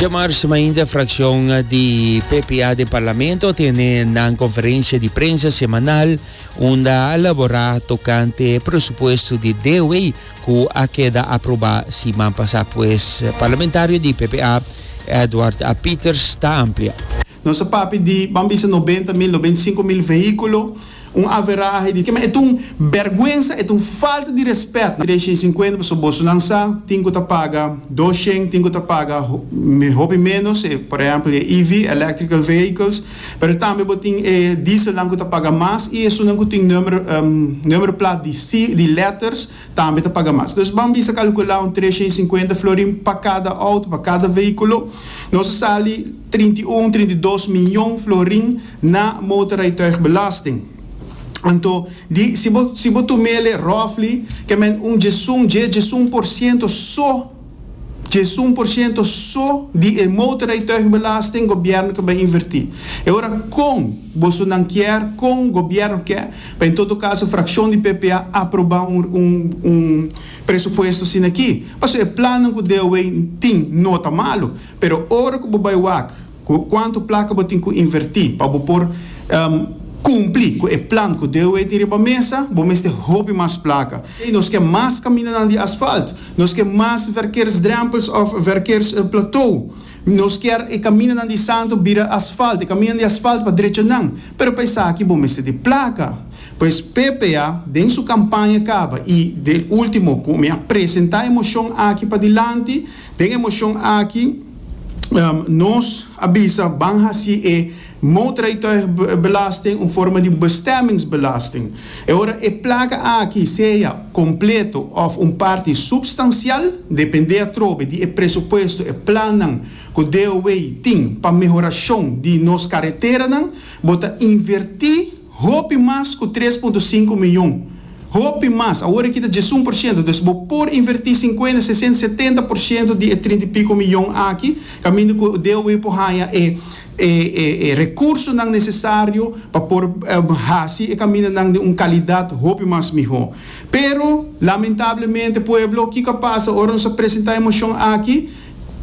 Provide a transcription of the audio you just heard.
Djamars mainta fracción di PPA de Parlamento tiene nan conferencia di prensa semanal unda a elabora tocante presupuesto di DW cu a keda aproba siman pasa pues parlamentario di PPA Edward A. Pieters ta amplia. Nos a papia di, ban bisa nobenta mil, nobenta i sinku mil vehiculo, un averahe di kema e ta un berguensa, e ta un falta di respet. Tres shen sinkuenta pasobra bosonan sa tin ku ta paga dos shen, tin ku ta paga hopi menos, e por ehempel e EV, electrical vehicles, pero tambe bo tin e dieselnan ku ta paga mas i esunnan ku tin number number plat di si di letters tambe ta paga mas. Dus ban bisa kalkula un tres shen sinkuenta florin pa kada auto, pa kada vehiculo. Nos a sali. trinta i un, trinta i dos mion florin na motorrijtuigbelasting. Anto, di, si bo, si bo tumele roughly, ke men un djesun, dje, djesun por siento so, djesun por siento so di e motorrijtuigbelasting gobièrnu ke bai invertí. E ora kon bosonan kier, kon gobièrnu ke, pa en todo kaso frakshon di PPA aprobá un, un, un presupuesto asina akí. Pasobra e plannan ku DOW tin no ta malu. Pero ora ku bo bai wak ku kuantu plaka bo tin ku invertí pa bo por kumplí ku e plan ku DOE tin riba mesa, bo mester hopi mas plaka. Nos ke mas kamindanan di asfalt, nos ke mas verkeersdrempels òf verkeersplatou. Nos kier e kamindanan di Santo bira asfalt, e kamindanan di asfalt pa drecha nan. Pero pa esaki bo mester di plaka. Pues PPA den su kampaña kaba i del último ku mi a presentá e moshon aki padilanti, Den e moshon aki nos a bisa ban hasi e motorrijtuigbelasting un forma di bestemmingsbelasting. E ora e plaka aki sea kompleto òf un parti supstansial, dependé atrobe di e presupuesto, e plannan ku DOW tin pa mehorashon di nos kareteranan, bo ta invertí, Hopi mas ku tres punto sinku mion. Hopi mas. Awor e kita djes un por shento. Dus bo por invertí sinkuenta, sesenta, setenta por shento di e trinta i piko mion aki kaminda ku DOW por haña e e rekursonan nesesario pa por hasi e kamindanan den un kalidat hopi mas mihó. Pero, lamentablemente, pueblo, kiko a pasa ora nos a presentá e moshon aki?